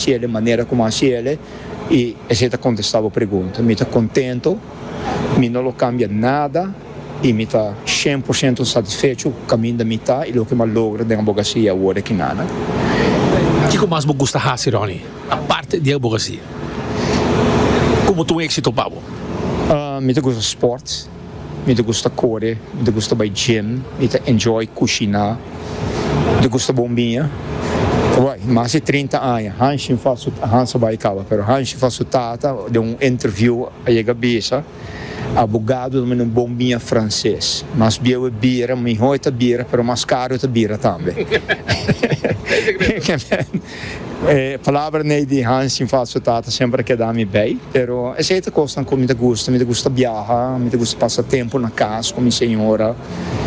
Ciele manera como a ciele y esey ta contesta bo pregunta. Mi ta contento, mi no lo cambia nada y mi ta cien por ciento satisfecho cu caminda mi ta y loke m'a logra den abogacia awor aki na na. Kico mas bo gusta haci, Ronnie, aparte di abogacia? Como ta un exito pa bo? Mi ta gusta sport. Mi ta gusta kore, mi ta gusta bai gym, mi ta enjoy kushiná, mi ta gusta bombia. Bai, mas di trinta aña, Hanshi fala su, Hans a bai kaba, pero Hanshi fala su tata den un interviú, a yega bisa, Abogado ta manda un bombia franses. Mas bieu e bira, mihó e ta bira, pero mas karu e ta bira tambe. E palabra nee di Hans sin falso tata semper a keda mi bay, pero esey ta cosnan cu mi ta gusta, mi ta gusta biaha, mi ta gusta pasa tempo na cas cu mi señora.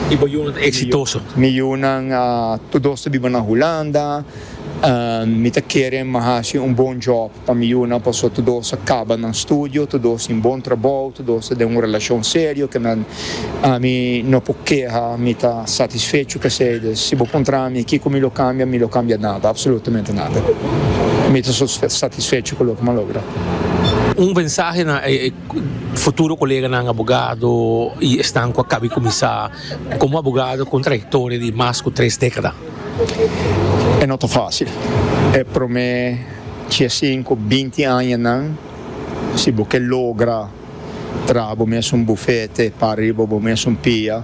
Y bo yunan ta exitoso? Mi yunan tur dos ta biba na Hulanda, mi ta kere mi hasi un bon job. Pa mi yu nan paso tur dos a caba nan studio, tur dos tin bon trabou, tur dos ta den un relacion serio ke nan ami no por keha, mi ta satisfecho pesey. Des si bo puntra mi kiko mi lo cambia, mi lo cambia nada, absolutamente nada. Mi ta so satisfecho cu loke mi a logra. Un mensahe na e futuro coleganan abogado y esnan cu a caba di cuminsa como abogado cu un trayectoria di mas cu tres decada? E no ta facil. E prome. Diesin ku binti añanan, si bo ke logra traha bo mes un bufete pa riba bo mes un pia,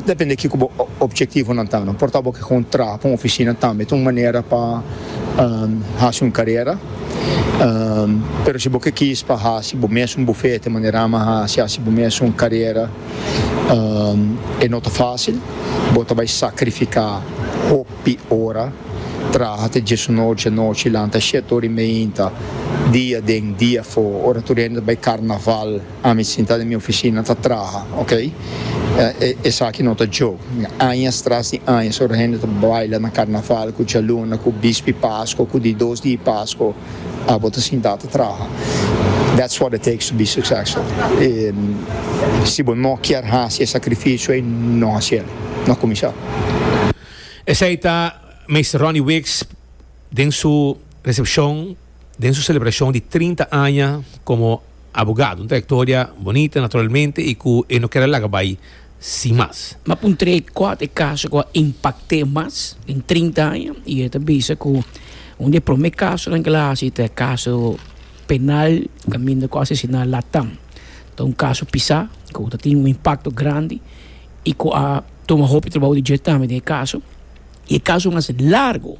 depende kiko bo opjektivonan ta, no por ta bo ke kon traha pa un ofisina tambe ta un manera pa hasi un karera, pero si bo ke kis pa hasi bo mes un bufete manera ama hasi, hasi bo mes un karera, e no ta fásil, bo ta bai sakrifiká hopi. Pi ora, traha te djesu nochi, anochi lanta shet ora i meinta, dia den, dia afo, ora tur hende ta bai karnaval, ami sinta den mi ofisina ta traha, ok? Esaki no ta djok. Añas tras di añas, ora hende ta baila na karnaval ku djaluna, ku bispi Pasko, ku di dos di Pasko, abo ta sinta ta traha. That's what it takes to be successful. Si bo no kier hasi e sakrifisio ei, no hasiel. No kuminsá. Esei ta Meester Ronnie Wicks den su recepcion den su celebracion di trinta aña como abogado. Un trayectoria bonita naturalmente y cu e no kier a laga bay sin mas. M'a puntr'é cua ta e caso cu a impact'é mas den trinta aña y e ta bisa cu un di e prome casonan cu el a haci ta e caso penal caminda cu asesina Latam. Ta un caso pisá cu ta tin un impacto grandi y cu a. tuma hopi trabou di dje tambe den e kaso i e kaso mas largo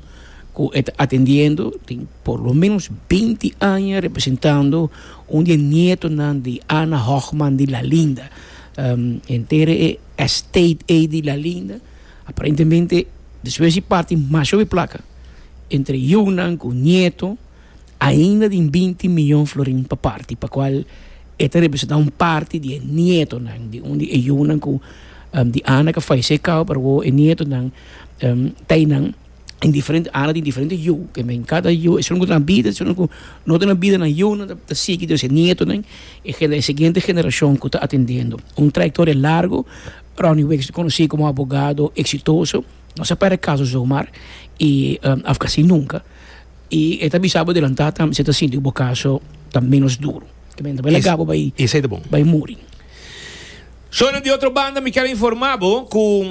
ku e ta atendiendo tin por lo menos beinti aña representando un di e nietonan di Ana Hochman di Lalinda henter e estate ei di Lalinda aparentemente despues di parti masha hopi plaka entre yunan ku nieto. Ainda den binti miyon florin pa parti, pa kual e ta representá un parti di e nietonan di un di e yunan ku di Ana ka falesé kau, pero wou e nietonan ta einan den diferente Ana tin diferente yu, ke men kada yu esun ku ta na bida, esun ku no ta na bida nan yunan ta ta sigui dores e nietonan, e gen e siguiente generashon ku ta atendendo. Un trayektoria largu, Ronnie Wicks ta konosí komo abogado eksitoso, no sa pèrdè kaso zomaar i af ka así nunka. I e ta bisa bo delantá tambe si e ta sinti ku bo kaso ta ménos duru. Kiba yende bo el a gaba bai bai muri. So na di otro banda mi kier a informá bo ku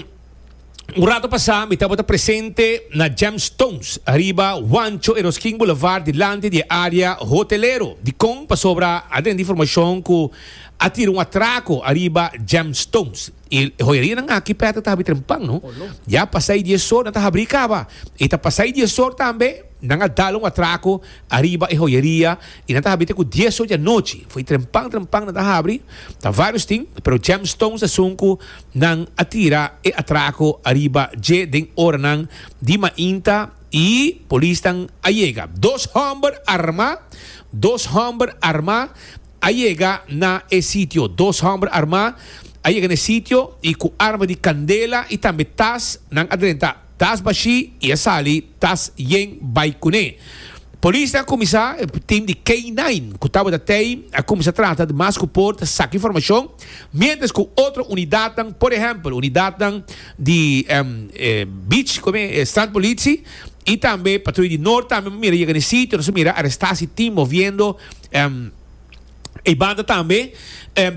un rato pasá mi tabata presente na Gemstones ariba Juancho Eroskin Boulevard dilanti di e área hotelero di Kon pasobra a tene informashon ku a tira un atrako ariba Gemstones. I hoyarianan aki pèt a tabita den pan, no? Ya a pasá e dies or nan ta habrí kaba. I ta pasá e dies or tambe, nan a dal un atrako ariba e hoyaria i nan ta habita ku dies or di anochi. Foi den pan den pan nan ta habri, ta vários tin, pero James Stones esun ku nan a tira e atrako ariba dje den oranan di mainta i polisnan a yega. Dos hòmber armá, dos hòmber armá. a yega na e sitio. Dos hòmber armá a yega na e sitio i ku arma di kandela i tambe tas. Nan a drenta tas bashí i a sali tas yen bai kuné. Polisnan a kuminsá, tim di K-nine ku tabata t'ei a kuminsá trata di mas ku por ta saka informashon, miéntras ku otro unidatnan, por ehèmpel unidatnan di Beach, kome e? Strandpolitie i tambe Patrui di Noord tambe mira yega na e sitio. Nos a mira arestasi tim moviendo E banda tambe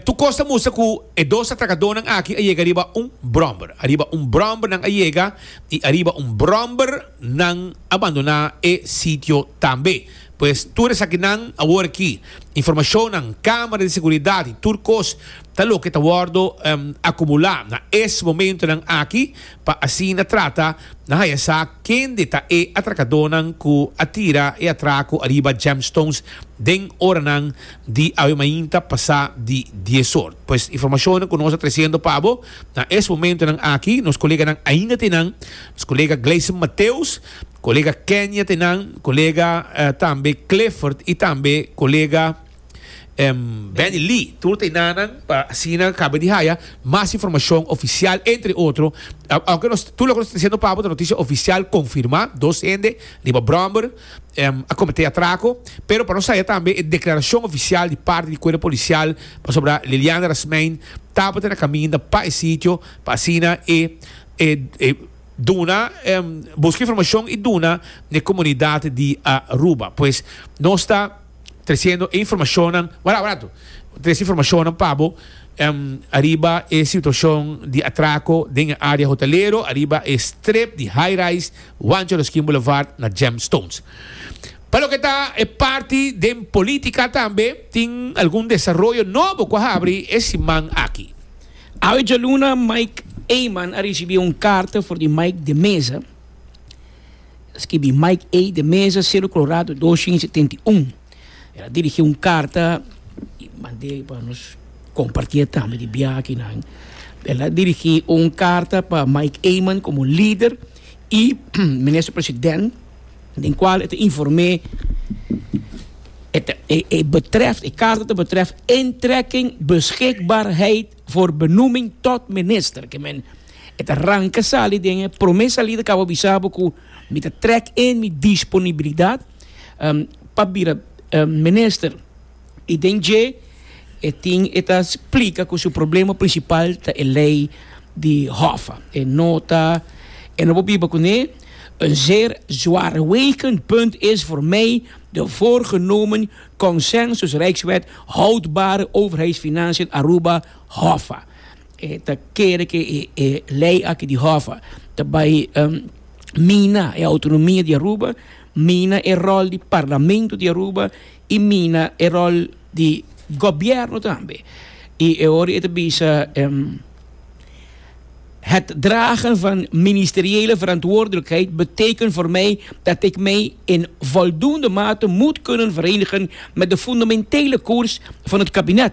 tur kos ta mustra ku e dos atrakadonan aki a yega riba un bròmber. Ariba un bròmber nan a yega i ariba un bròmber nan a bandoná e sitio tambe. Pues tur esakinan awor aki, informashonnan, kámara di seguridat i tur kos ta loke ta wòrdu akumulá na es momentonan aki. pa asina trata na haya sa kende ta e atrakadonan ku a tira e atraku ariba Gemstones den oranan di awe mainta pasá di dies or. Pues informashonnan ku nos a tresiendo pa bo na es momentonan aki, nos koleganan ainda te nan, nos kolega Gleison Mateus, kolega Kenya te nan, kolega tambe Clifford i tambe kolega. Benny Lee, tur ta enanan pa asina caba di haya mas informacion oficial entre otro aunke nos tur loke nos ta diciendo pabo ta noticia oficial confirma dos hende riba bromber a comete atraco pero pa nos haya tambe e declaracion oficial di parti di cuerpo policial pasobra Liliana Rasmein tabata na caminda pa e sitio pa asina e duna busca informacion y duna na e comunidad di Aruba pues nos ta. Treciendo e informacionnan barato barato. Trece informacionnan pa bo ariba e situacion di atraco den e area hotelero ariba e strip di High Rise Juancho Ruskin Boulevard na Gemstones. Pa loke ta e parti den politica tambe tin algun desaroyo nobo cu a habri e siman aki. Awe djaluna Mike Eman a ricibi un carta for di Mike de Meza. Skibi Mike A. de Meza, Cerro Colorado, dos shin setenta i un. El a dirigí un karta i mand'é pa nos kompartié tambe di biaha akinan. El a dirigí un karta pa Mike Eman komo lider i minister president, den kual e ta inform'é e betrèf, e karta ta betrèf intrekking beschikbaarheid voor benoeming tot minister. E ta ranca sali den e prome salida cabo bisa bo cu mi ta trek in mi disponibilidad um, pa bira um, minister. Y den dje e tin e ta splica cu su problema principal ta e ley di Hoffa. E no ta, e no por biba cu ne. Een zeer zwaarwegend punt is voor mij de voorgenomen Consensus Rijkswet Houdbare Overheidsfinanciën Aruba, Hoffa. E ta kere ke e lei aki di Hoffa ta bai mina e autonomia di Aruba, mina e ròl di parlamento di Aruba i mina e ròl di gobièrnu tambe. I e ora e ta bisa het dragen van ministeriële verantwoordelijkheid betekent voor mij dat ik mij in voldoende mate moet kunnen verenigen met de fundamentele koers van het kabinet.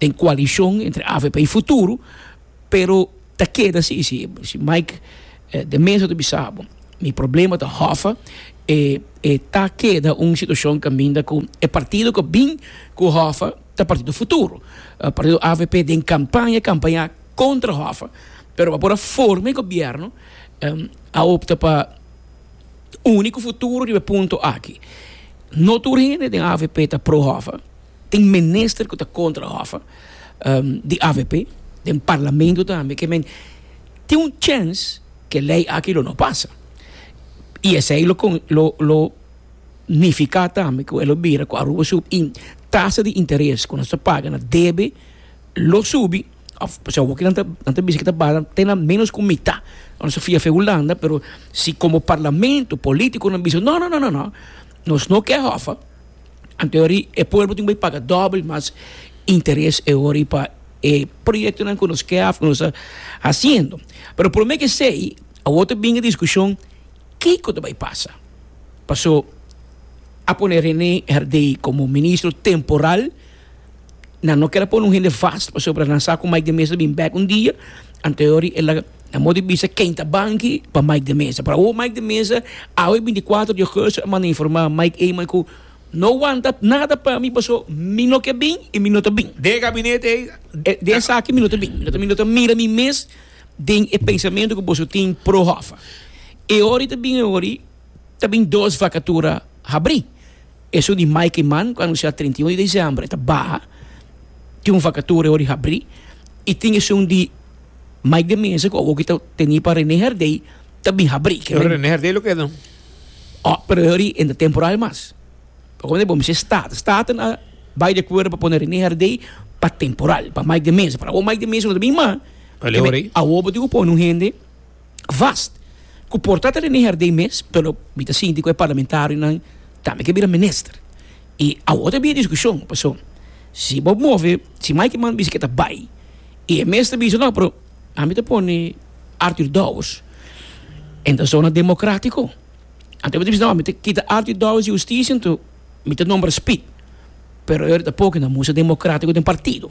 den koalishon entre avp y Futuro, pero ta keda si, si si Mike de Meza ta bisa bo mi problema ta Hoffa e e ta keda un situashon kaminda ku e partido ku a bin ku Hoffa ta partido Futuro, partido avp den kampaña kampañá kontra Hoffa pero pa por a forma e gobièrnu a opta pa uni ku Futuro riba e punto aki. No tur hende den avp ta pro Hoffa. Tin minister cu ta contra Hoffa di avp den parlamento tambe ke men tin un chance ke ley aki lo no pasa y esey lo lo nifica tambe cu e lo bira cu Aruba su tasa di interes cu nos ta paga na debe lo subi of pasobra awor kinan nan ta bisa ke ta baha te na menos cu mitad lo nos ta fia fe Hulanda pero si como parlamento politiconan bisa no no no nos no ke Hoffa. Anteori e pueblo tin bay paga dobel mas interes e ori pa e proyectonan cu nos kea of cu nos ta haciendo. Pero prome cu esey awor ta bin e discusion kico ta bay pasa. Paso a pone Rene Herdey como ministro temporal. Nan no ker a pone un hende vast pasobra nan sa ku Mike de Meza ta bin bèk un dia, anteori el a nan modi bisa ken ta banki pa Mike de Meza. Pero awor Mike de Meza, awe bintikwatro di ogosto a manda informa Mike Eman ku, No wanta nada pa mi paso mi no ke bin i mi no ta bin. Den e gabinete ei, den esaki mi no ta bin. Mi no ta mira mi mes den e pensamentu ku boso tin pro Hoffa. E ora i ta bin e ora ei. ta bin dos vakatura habrí. Esun di mai ku man ku anunsiá trinta i un di desèmber e ta baha. Tin un vakatura e ora di habrí i tin esun di Mike de Meza ku awor ku e ta teni pa Rene Herdey ta bin habrí. Pero Rene Herdey lo keda. Oh, pero e ora e ta temporal mas. Bo konta bo mester Staten. Staten a bai di akuerdo pa pone Rene Herdey pa temporal pa Mike de Meza. Pero awor Mike de Meza no ta bin mas. Awor bo tin ku pone un hende. vast cu por ta ta Rene Herdey mes, pero mi ta sinti cu e parlamentarionan tambe ke bira minister. Y awor ta habia discusion, pasobra si bo move, si Mike Mann bisa ke ta bay y e mes ta bisa no, pero ami ta pone Arthur Dowers en ta zona democratico. Anto bo ta bisa no, mi ta kita Arthur Dowers di Husticia anto mi ta nombra Speed, pero e ora ta poke na musa democratico den partido.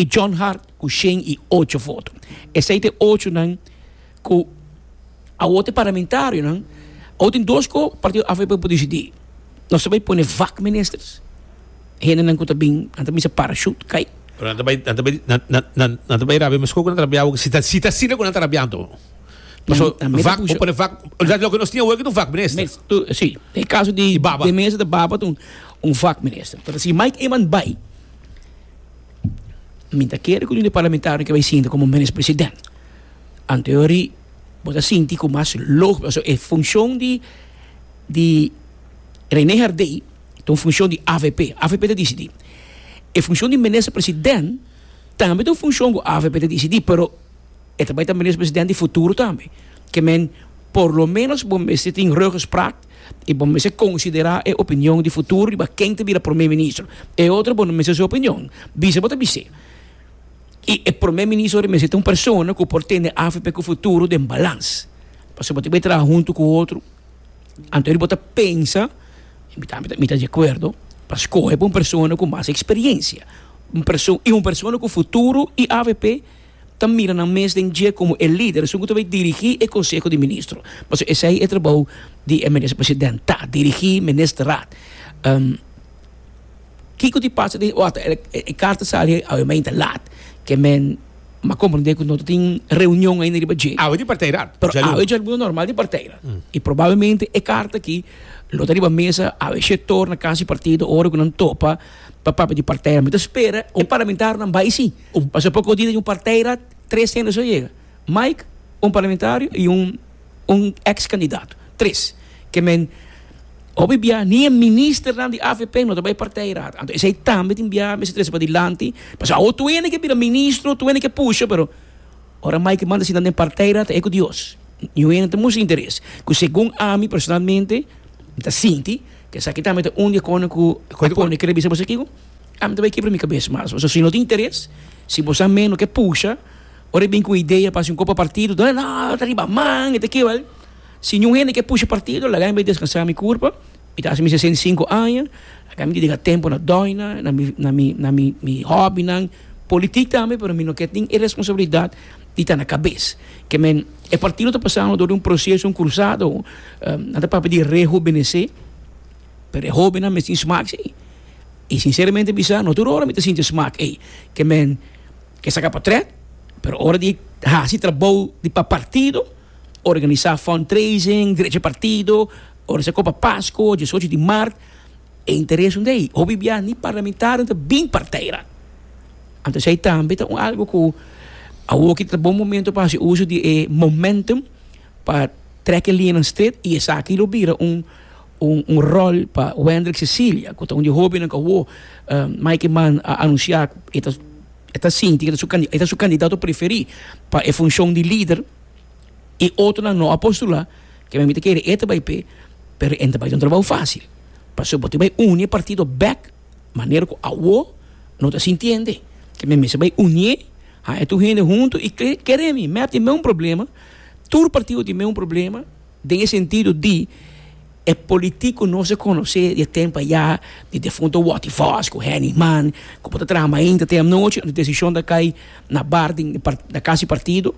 I John Hart ku shen i ocho voto. Esei ta e ochonan ku awor ta e parlamentarionan. Awor tin dos ku partido avp por disidí. Nos ta bai pone vak ministers, hendenan ku ta bin, nan ta misa parachute kai. Pero nan ta bai, nan ta bai, nan, nan, nan, nan ta bai rabia mesko ku nan ta rabia awor, si ta, si ta asina ku nan ta rabia anto. Paso, Nan mester vak, por pusha. pone vak, originalmente loke nos tin awor aki ta un vak minister. Mes, tu, si, den e kaso di, Di baba. di Mesa di Baba ta un, un vak minister. Pero si Mike Eman bai. Mi ta kere ku un di parlamentario ke bai sinta komo minis president. Anteori bo ta sinti ku mas lógiko pasobra e funshon di di René Hardé ta un funshon di avp. Avp ta disidí. E funshon di minister president tambe ta un funshon ku avp ta disidí pero e ta bai ta minis president di futuro tambe. Ke men por lo menos bo mester tin ruggespraak. y bo mester considera e opinion di futuro riba ken ta bira Prome Ministro. E otro bo no mester su opinion, bisa bo ta bis'e. Y e Prome Ministro ta mester ta un persona cu por tene avp cu futuro den balans. Pasobra bo ta bay traha hunto cu otro, anto di bo ta pensa, mi ta di acuerdo, pa scoge pa un persona cu mas experiencia, un perso-, y un persona cu futuro y avp. ta mira nan mes den dje komo e lider esun ku ta bai dirigí e konseho di ministro, pasobra esei e trabou di e Minister President ta, dirigí Ministerraad. Kiko tin pasa den ota e karta sali awe ma ainda lat, ke men ma komprendé ku no ta tin reunion ainda riba dje, Awe di parteirat, djaluna. Awe djaluna normal di parteirat, i probablemente e karta aki lo ta riba mesa awe sektor na Kas di Partido ora ku nan topa pa papia di parteirat. Mi ta spera e parlamentarionan bai sí. Un pasaporko di un parteira tres hende's a yega, Mike, un parlamentario y un un ex candidato. Tres. Ke men hopi bia ni e ministernan di avp no ta bay parteira. Anto esey tambe tin bia mester trese padilanti. Paso awo tu hende ke bira ministro, tu hende ke pusha pero ora Mike manda asina den parteira ta e ku Dios. Niun hende no ta mustra interes. Ku segun ami personalmente mi ta sinti ke esaki tambe ta un di e kono ku a pone kere bisa boso aki ku. Ami ta bai kebra mi kabes mas. Pasobra si no tin interes, si bo sa meno ke pusha, ora e bin ku idea pa hasi un kopa partido, ta no, e ta riba man, e ta ke bal. Si yu hende ke pusha partido, laga mi bai deskansa mi kurpa, mi ta hasi mi sesenta i sinku aña, laga mi dediká tempu na dòina, na mi, na mi, na mi, mi hòbinan, politik tambe, pero mi no ke tin e responsabilidat di ta na kabes. Ke men, e partido ta pasando dor di un proseso, un kursado, nan ta papia di rehubenesé. pero e hóbennan mes tin smak sí. I sinseramente bisa, no tur ora mi ta sinti e smak ei. Ke men ke saka pa trèt, pero ora di hasi trabou di pa partido, organisá fundraising, drecha partido, organisá Copa Pasco, diesocho di mart, e interes unda ei. Hopi bia ni parlamentarionan ta bin partij ra. Anto esei tambe ta un algu ku awor ki ta bon momento pa hasi uso di e momentum pa trèk e liñanan stret i esaki lo bira un Un un rol pa Wendrick Cecilia cu ta un di hobennan cu awo Mikey Mann a anuncia cu e ta e ta sinti cu e ta su candidato preferi pa e funcion di lider y otronan no a postula cu mi ta kere e ta bay p'e pero e no ta bay den un trabao facil pasobra bo tin bay uni e partido bek manera cu awo no ta sintiende cu mi mester bay unie haña tur hende hunto y kere mi mep tin meun problema tur partido tin meun problema. Den e sentido di e politico nos a conoce di e tempo aya di defunto Watty Vos cu Henny Man cu por ta traha mainta te anochi ando e decision ta cay na bar den na casa di partido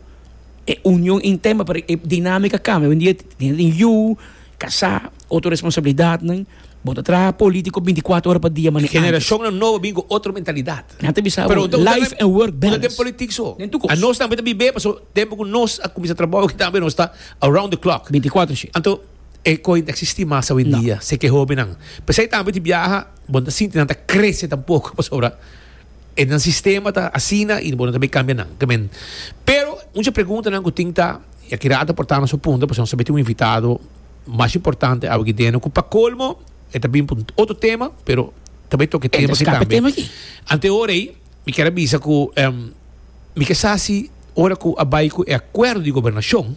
e union interna pero e dinamica cambia oyendia e tin yu, casa, otro responsabilidadnan. Bo ta traha politico binticuatro ora pa dia mane antes. Generacionnan nobo bin cu otro mentalidad. Nan ta bisa bo life and work balance. Unda ta den politic so? Den tu cos. Nos tambe ta bibe paso tempo cu nos a cuminsa trabao aki tambe nos ta around the clock. Binticuatro shi. Anto e cohe no ta existi mas awendia si ke hobennan. Pesey tambe tin biaha bo no ta sinti nan ta crece tampoco pasobra e nan sistema ta asina y bo no ta bay cambia nan. Ta men. Pero mucha preguntanan cu tin ta y aki Rata por tamanan su punto paso nos tambe tin un invitado. mas importante awe ki deno ku pa kolmo e ta bin un otro tema pero ta bai tok e tema ki tambe ante ora ei mi kier a bisa ku mi ke sa si ora ku a bai ku e akuerdo di gobernashon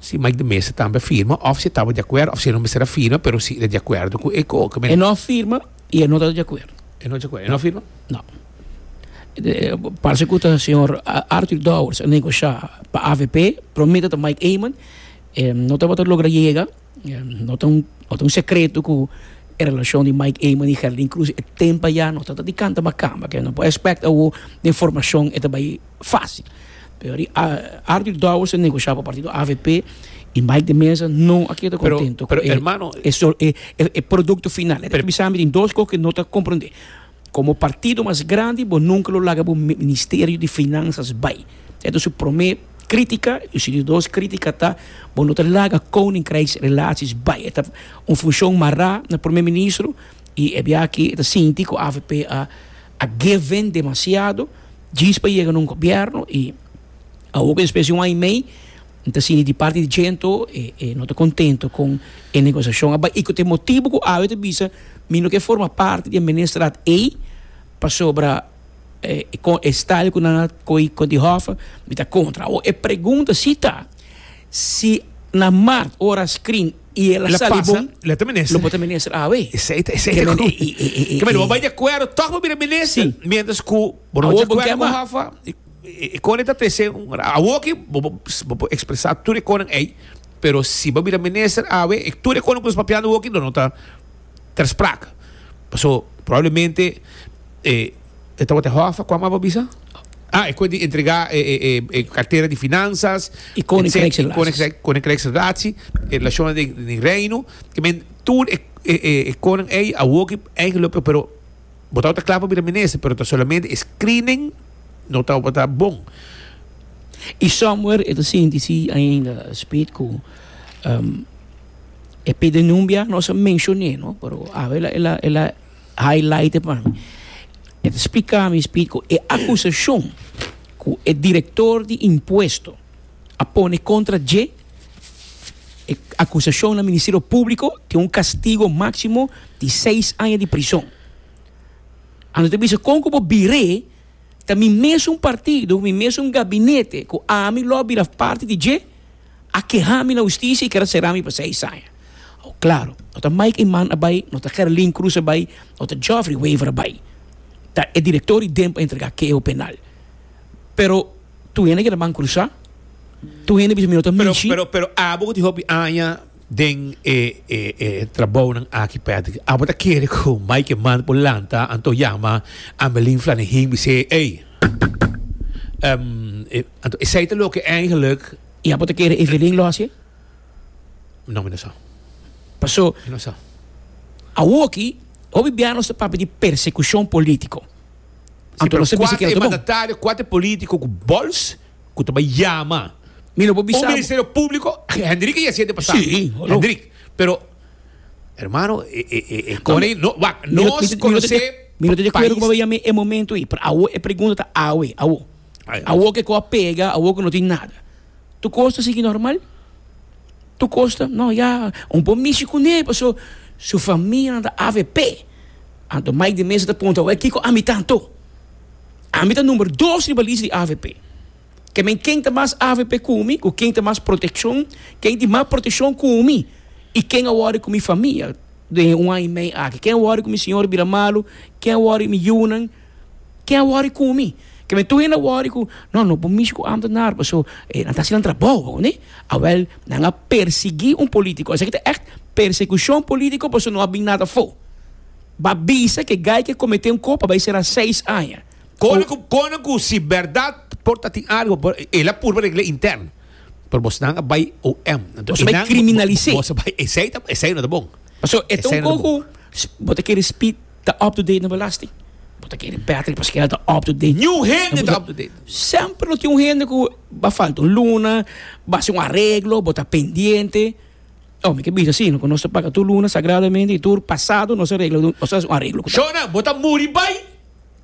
si Mike de Meza tambe a firma òf si e tabata di akuerdo òf si e no mester a firma pero si e di akuerdo ku e ko e no a firma i e no ta di akuerdo e no di akuerdo e no a firma no parse ku ta señor Arthur Dowers a negoshá pa avp promé ta Mike Eman. E no tabata logra yega, no ta un secreto cu e relacion di Mike Eman y Geraldine Cruz e tempa ya no tabata di canta ma camba, que no por expect awo den formacion e ta bay facil. Pero di Arthur Dowers a negocia pa partido avp y Mike de Meza no a keda contento cu e producto final. E ta bisa mi tin dos cos que no ta comprende. Komo partido mas grandi bo nunka lo laga bo Ministerio di Finansas bai. E ta su promé krítika i su di dos krítika ta bo no ta laga Koninkrijksrelasies bai. E ta un funshon mará na Promé Ministro i e biaha e ta sinti ku avp a a geven demasiado djis pa yega na un gobièrnu i. Awor ku e specie un aña i mei N ta sinti di parti di djento e e no ta kontento kon e negosiashon a bai i ku ta e motibu ku awe ta bisa mi no ke forma parti di e ministrat ei pasobra kon e style ku nan a kohe kon di hòf mi ta kontra. Awor e pregunta si ta si na mart ora a screen i el a sali bon lo por ta minister awe. Bo a bai di akuerdo tòg pa bira minister miéntras ku bo no ta di akuerdo ku hòf. E konen ta trese un ra. Awor aki bo por expresa tur e konen ey, pero si bo a bira minister awe, tur e konen cu nos papiando awor aki lo no ta ter sprake. Paso probablemente e tabata e hof acual mas bo a bisa? Ah, e cu di entrega e cartera di finanzas, e Koninkreks Relatie, e relacionnan den Reino, kimen tur e konen ey awor aki eigen lo pero. Bo tabata kla pa bira minister, pero ta solamente e screening no tabata bon. I somewhere e ta sinti si ainda spijt ku e Pedenumbia nos a menshoné, no, pero awe el a el a highlighte pa mi. E ta spliká mi spijt ku e akusashon ku e direktor di impuesto. a pone kontra dje e akusashon na Ministerio Públiko tin un kastigo máksimo di seis aña di prison. Anto ta bisa kon ku bo bir'é ta mi mesun partido, mi mesun gabinete ku ami lo a bira parti di dje a keha mi na hustisia i kier a sera mi pa seis aña. Klaro, no ta Mike Eman a bai, no ta Gerlin Croes a bai, no ta Geoffrey Wever a bai. Ta e direktor di Demp a entregá keo penal. Pero. Tur hende keda ban crusá. Tur hende bisa mi no ta mishi. Pero, pero, pero abo cu tin hopi aña den e, e, e trabounan aki, Patrick, abo ta kere cu Mike Eman por lanta anto yama Amelin Flanihin bis'é, Ey, ehm, e, anto esey ta loke eigenlijk. Y abo ta kere Evelyn lo hacié? No, mi no sa. Paso, Mi no sa. awoki, hopi biaha nos ta papia di persecucion politico. Si pero kuater e mandatario, kuater politico cu bols cu ta bay yama un ministerio publico, Hendrik a yesi e di pasado, Hendrik, pero hermano e e e e con e no wak nos conoce país. Mi no ta de acuerdo cu bo bay yama e momento ahi, pero awo e pregunta ta awe, awo. Awor ke ko a pega, awor ke no tin nada. Tu kos ta sigui normal? Tu kos ta, no ya, un po mishi kuné paso su famianan ta avp. Anto Mike di Meza ta punta, wè kiko ami ta anto? Ami ta number dos riba lista di avp. Ke men ken ta mas avp ku mi, ku ken ta mas protekshon, ken tin mas protekshon ku mi i ken a wòrdu ku mi famia den un aña i mei aki, ken a wòrdu ku mi siñor bira malu, ken a wòrdu mi yunan. Ken a wòri ku mi? Ke mi tur hende a wòri ku, no, no por mishi ku ámtenar paso nan ta hasinan trabou awor. Awèl, nan a persiguí un polítiko. Esaki ta ègt persekushon polítiko paso no a bin nada afó. Bo a bisa ku e guy ku a kometé un kos pa bai sera seis aña. Kòne ku kòne ku si bèrdat por ta tin algu, por e la purba regl'é interno. Pero bosnan a bai OM. Bo ta bai kriminalis'é. Bo ta bai, esei ta, esei no ta bon. Paso e ta un kos ku bo ta kere spit. ta up to date na belasting. Bo ta kere Patrick Pasquel ta up to date. New hende ta up to date. Semper lo tin un hende ku a falta un luna, bo a hasi un areglo, bo ta pendiente. Oh, mi ke bisa si, no, ku nos ta paga tur luna sagradamente i tur pasado nos a regla, nos a hasi un areglo ku ta. Shona, bo ta muri bai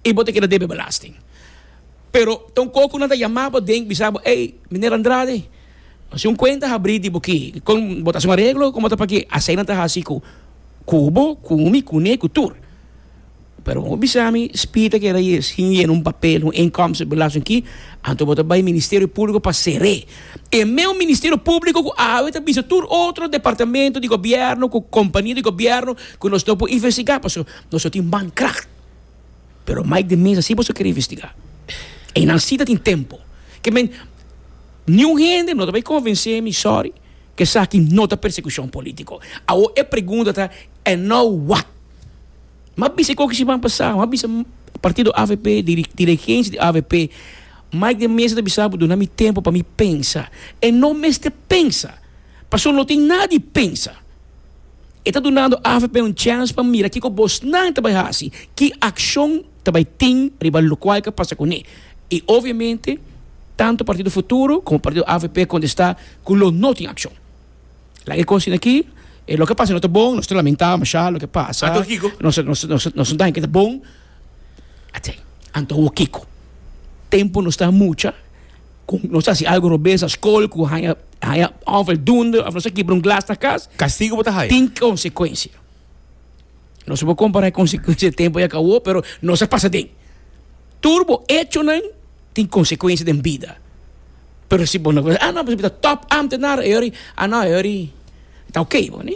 i bo ta keda debe belasting. Pero ta un kos ku nan ta yama bo den bisa bo, Ey, Miner Andrade. Nos tin un cuenta habrí di bo ki con bo ta haci un areglo como ta paki asey nan ta haci cu cubo, cu mi, cu ne, cu tur. Pero bo bisa mi spi ta keda ye sin yena un papel, un inkomsten belasting ki, anto bo ta bay Ministerio Publico pa sere. E meun Ministerio Publico cu awe ta bisa tur otro departamento di Gobierno cu compania di Gobierno cu nos no por investiga pasobra nos no tin mankracht. Pero Mike de mesa si boso kere investigá y nan si tatin tempo ke men niun hende no ta bay konvensé mi sorry ke esaki no ta persekushon politiko awo e pregunta ta en nou wat m'a bisa e kokishi ban pasá m'a bisa partido avp dirigenshi di avp Mike de mesa ta bisa bo duna mi tempo pa mi pensa e no mester pensa pasobra no tin nada di pensa E ta dunando avp un chèns pa mira kiko bosnan ta bai hasi, ki akshon ta bai tin riba lokual ke pasa kuné. I obviamente tantu Partido Futuro komo Partido avp a kontestá ku lo no tin akshon. Laga e kosnan aki, e loke pasa no ta bon, nos ta lamentá mashá loke pasa, Anto kiko? nos nos nos nos daña ke ta bon, atsei. Anto kiko? Tempu nos ta mucha. Cu nos ta haci algo robeza school cu haya haya afel dunde of nos ta kibra un glas na cas. Castigo bo ta haya. Tin consecuencia. Nos no por compara e consecuencia den tempo yacabo pero nos a pasa den. Tur bo hechonan tin consecuencia den bida. Pero si bo no a no bo ta top ambtenaar a yori a no a yori ta ok bo ne.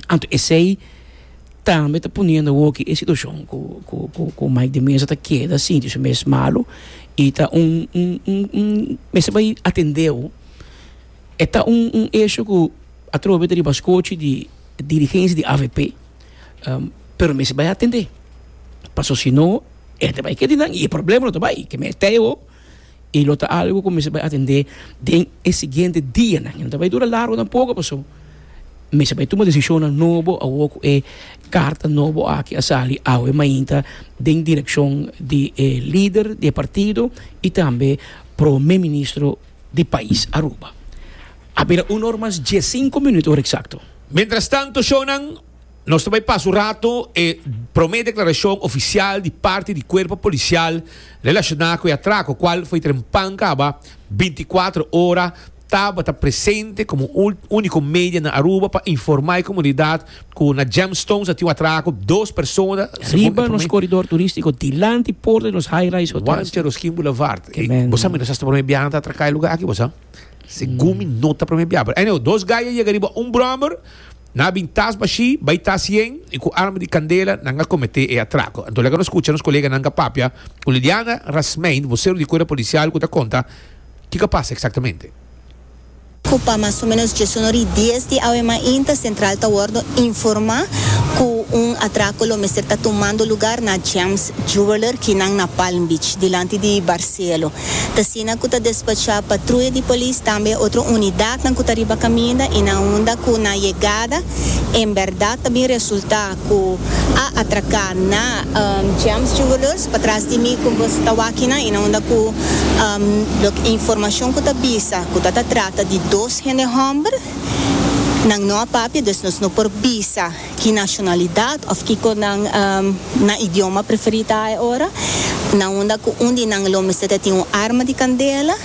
Anto esey. tambe ta poniendo awor ki e situacion cu cu Mike de Meza ta keda sinti su mes malu y ta un un mester bay atendeo e ta un un hecho cu atrobe ta riba scochi di dirigencia di avp pero mester bay atende pasobra si no e ta bay keda di nan y e problema lo ta bay ke men e tey awor. i lo ta algu ku mester bai atendé den e siguiente dianan. I no ta bai dura largu tampoco, paso mester bai tuma desishonnan nobo awor ku e karta nobo aki a sali awe mainta den direkshon di e lider di e partido i tambe Prome Ministro di pais Aruba. A bira una or mas dies sinku minuto, ora eksakto. Mientras tanto, shownan. Nos ta bai pas un rato e prome declaracion oficial di parti di cuerpo policial relaciona cu e atraco cual foi trempan caba binticuatro ora tabata presente como unico media na Aruba pa informa e comunidad cu na Gemstones a tin un atraco dos persona riba nos coridor turistico dilanti porta di nos high rise hotel Juan Cheroskin Boulevard bo sa mi nos asta prome bia na ta atraca e lugar aki bo sa segun mi no ta prome bia pero anyway dos guy a yega riba un brommer Nan a bin tas bashí, bai tas yen i ku arma di kandela nan a kometé e atrako. Anto laga nos kucha nos kolega nan ta papia ku Liliana Rasmeyn, vosero di Kuerpo Polisial ku ta konta kiko a pasa eksaktamente. ku pa mas o menos diesuno di dies di awe mainta sentral ta wordo informá ku un atrako lo mester ta tumando lugar na Gems Jeweler kinan na Palm Beach, dilanti di Barcelo. Ta asina cu ta despacha patruya di polis tambe e otro unidadnan cu ta riba caminda y na unda cu nan yegada en berdad ta bin resulta cu a atraca na James Jewellers patras di mi cu nos ta wakinan y na unda cu loke e informacion cu ta bisa cu ta ta trata di dos hende homber nan no a papia, dus nos no por bisa. ki nashonalidat of kiko nan nan idioma preferí ta ai ora, na unda ku un di nan lo mester ta tin un arma di kandela,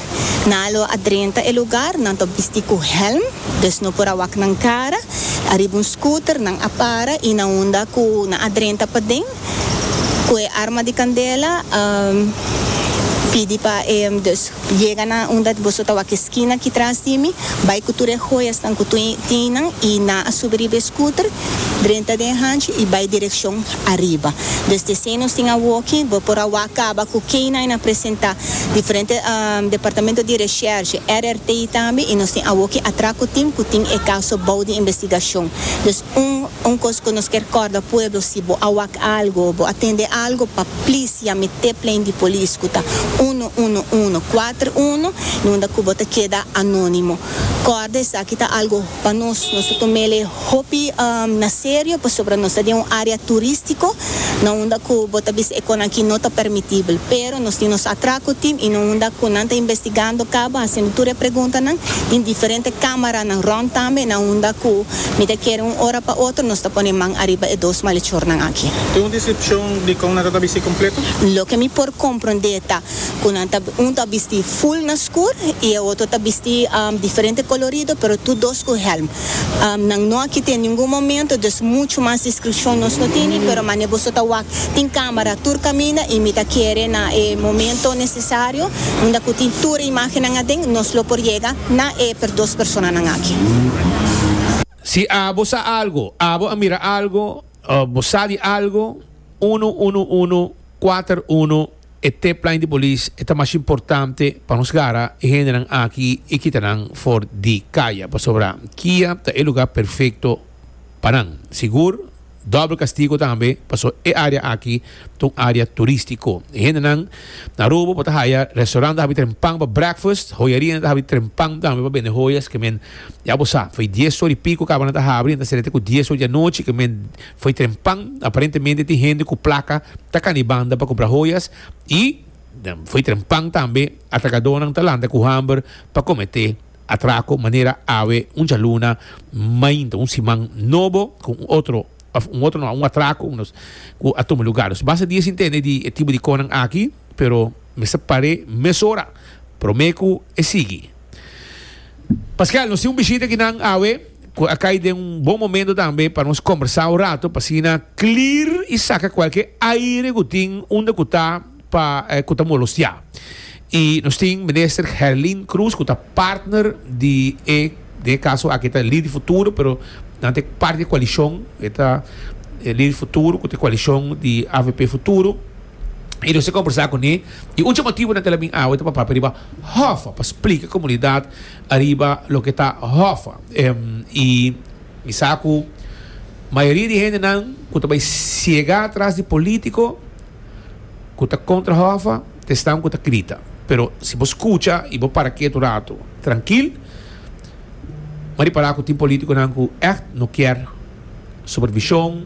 nan a lo a drenta e lugar, nan ta op bisti ku hèlm, dus no por a wak nan kara, ariba un scooter nan a para i na unda ku nan a drenta paden, cu e arma di candela a pidi pa e dos yega na unda boso ta wak e skina aki tras di mi, bay cu tur e hoyasnan cu tin nan y nan a subi riba e scooter, drenta den hanchi y bay direccion ariba. Desde esey nos tin a woki, bo por a wak caba cu keynan e na presenta diferente Departamento di Recherche, RRTI, tambe y nos tin a woki atra cu tin cu tin e caso bou di investigacion. Un un cos cu nos kier corda pueblo si bo a wak algo o bo a tende algo pa please yami te plein di police cu ta uno uno uno cuater uno y unda cu bo ta keda anonimo corda esaki ta algo pa nos nos ta tomele hopi na serio pasobra nos ta den un area turistico na unda cu bo ta bisa e cos nan aki no ta permitibel pero nos tin nos atraco team y na unda cu nan ta investigando caba haciendo tur e pregunta nan tin diferente camaranan rond tambe na unda cu Mi ta kere un ora pa otro nos ta pone man ariba e dos malechornan aki. Tin un deskripshon di kon nan ta ta bisti kompleto? Loke mi por komprondé ta ku nan ta un ta bisti ful na skur i e otro ta bisti diferente kolorido pero tur dos ku hèlm. Nan no a kite ningun momento dus muchu mas deskripshon nos no tini pero manera boso ta wak tin kamera tur kaminda i mi ta kere na e momento nesesario unda ku tin tur e imágennan aden nos lo por yega Nan e per dos personanan aki. Si abo sa algo, abo a mira algo, of bo sa di algo, unu unu unu kuater unu e tipline di polis e ta mas importante pa nos gara e hendenan aki i kita nan for di kaya pasobra kia ta e luga perfekto pa nan. Sigur? Doble castigo tambe pasobra e area aki ta un area turistico. E hendenan na Aruba por ta haya restaurant ta habi trempan pa breakfast, hoyarina ta habi trempan tambe pa bende hoyas ke men ya bo sa. Fo'i dies or i pico caba nan ta habri, nan ta cera te cu dies or di anochi ke men fo'i trempan. Aparentemente tin hende cu placa ta cana di banda pa cumpra hoyas y fo'i trempan tambe atracadonan ta lanta cu hamber pa comete Atraco manera awe un djaluna mainta un siman nobo cu un otro of un otro no un atraco nos cu a tuma lugar nos basta di e sintende di e tipo di conan aki pero mester pare mesora prome cu e sigui Pascual nos tin un bishita aki nan awe cu a cay den un bon momento tambe pa nos combersa un rato pa asina clear y saca cualkier aire cu tin unda cu ta. pa ku ta molostiá i nos tin minister Herlin Cruz ku ta partner di e den e kaso aki ta Lider di Futuro pero nan ta parti di e koalishon e ta Lider di Futuro ku ta e koalishon di avp Futuro i nos a kombersá kuné i un di e motibu nan ta la bin awe ta pa papia riba Hoffa pa splika e komunidat ariba loke ta Hoffa i mi sa ku mayoria di hendenan ku ta bai siegá atras di polítiko ku ta kontra Hòva, ta esnan ku ta grita. Pero si bo skucha i bo para kiet un ratu trankil, bo ripará ku tin polítikonan ku ègt no kier supervishon,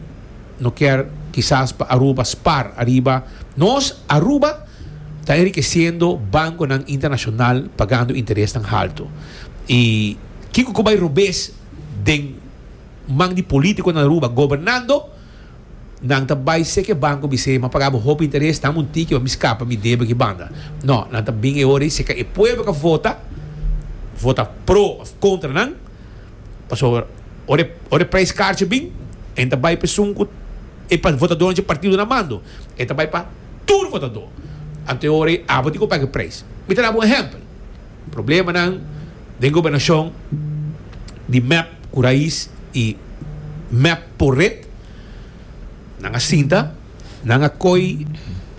no kier kisas pa Aruba spar ariba nos. Aruba ta enrikesiendo bankonan internashonal pagando interesnan haltu. I kiko ku bai robes den man di polítiko na Aruba gobernando? Nan ta bai sek e banko bis'é, M'a pagá bo hopi interes, dam un tiki pa mi skapa mi debe ki banda. No, nan ta bin e ora ei seka e pueblo ka vota, vota pro òf kontra nan, pasobra ora e, ora e preis karchi bin, e ta bai pa esun ku e pa votadónan dje partido nan mando, e ta bai pa tur votadó. Anto e ora ei abo tin ku paga e preis. Mi ta dá bo un ehèmpel. Problemanan den gobernacion di mep cu rais y mep por ret nan a sinta, nan a coy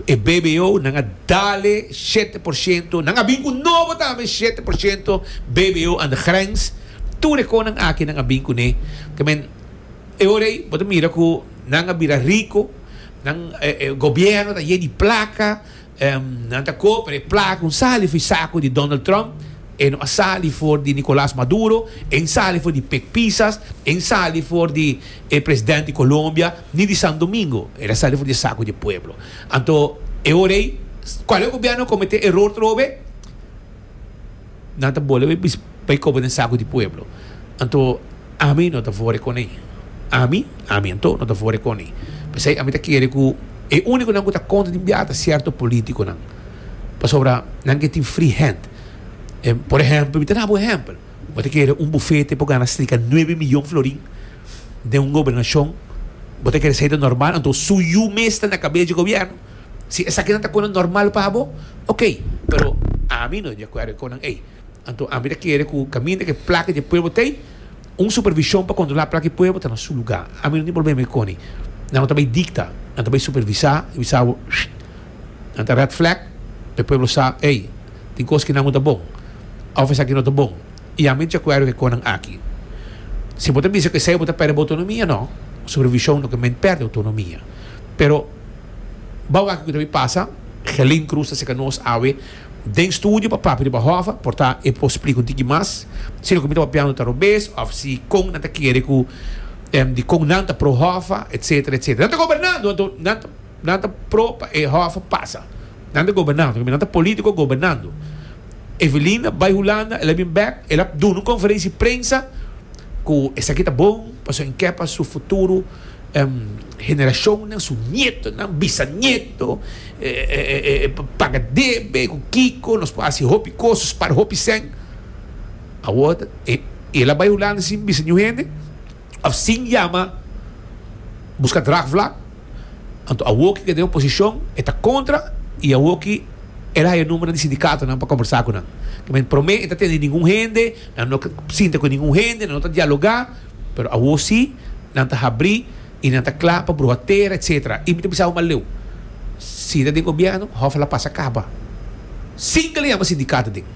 e bbo, nan a dale shete por ciento, nan a bin cu nobo tambe shete por ciento bbo an de grens, tur e conan aki nan a bin cu ne, kemen e ora ey bo ta mira cu nan a bira rico, nan e gobierno ta ye di placa. Nan ta koper e plaka ku sali for di saku di Donald Trump, e no a sali for di Nicolas Maduro, e no sali for di Pek Pisas, e no sali for di e president di Colombia ni di Santo Domingo, e ta sali for di e saku di e pueblo. Anto e ora ei, kual e gobierno a komete eror trobe? Nan ta bola e bis bay coba den saco di pueblo. Anto ami no ta vore con e. Ami, ami anto no ta vore con e. Pesey ami ta kere cu e uniconan cu ta contra di mbiaha ta cierto politiconan. Pasobra nan ke tin free hand. Por ehempel, mi ta dal bo ehempel. Bo ta kere un bufete por gana strika nuebe miyon florin den un gobernacion. Bo ta kere esey ta normal? Anto su yu mes ta na cabeza di gobierno. Si esaki nan ta kunda normal pa bo, ok, pero ami no diakuerdo ku nan ei. Anto ami ta kere ku kaminda ke plaka dje pueblo tei, un supervishon pa kontrolá plaka dje pueblo ta na su lugá. Ami no tin problema ei koni. Nan no ta bai dikta, nan ta bai supervisá i bisa bo, shh, nan ta red flag pa e pueblo sa, ei, tin kos ku nan no ta bon òf esaki no ta bon. I ami no diakuerdo ku e kos nan aki. Si bo ta bisa ku esei bo ta pèrdè bo otonomia, no, supervishon no ke men pèrdè otonomia. Pero. Bou aki ku ta bin pasa, Gelin Cruz ta seka nos awe den studio pa papia riba Hova, por ta e por splika un tiki mas, si loke mi ta papiando ta robes of si kon nan ta kere ku di kon nan ta pro Hova etsetera etsetera. Nan ta gobernando anto nan ta nan ta pro pa e Hova pasa. Nan ta gobernando pasobra nan ta politico gobernando. Evelina bai Hulanda el a bin bek el a duna un konferensi prensa ku esaki ta bon pasobra en kepa su futuro. Generacionnan, su nietonan, bisanieto, paga debe, cu kico, nos por haci hopi cos, spar hopi seng. Awor ta, el a bay Hulanda sin bisa niun hende, of sin yama busca draagvlak, anto awor cu e ta den oposicion, e ta contra, y awor cu el a haya number di sindicatonan pa conversa cu nan. Prome, e no ta tende ningun hende, nan no sinta cu ningun hende, nan no ta dialoga. Pero awor sí, nan ta habrí i nan ta kla pa bruha tera, etcétera. I mi ta bisa bo maleu, si ta den gobièrnu, hòf a la pasa kaba sin ke lo yama sindikat ta den.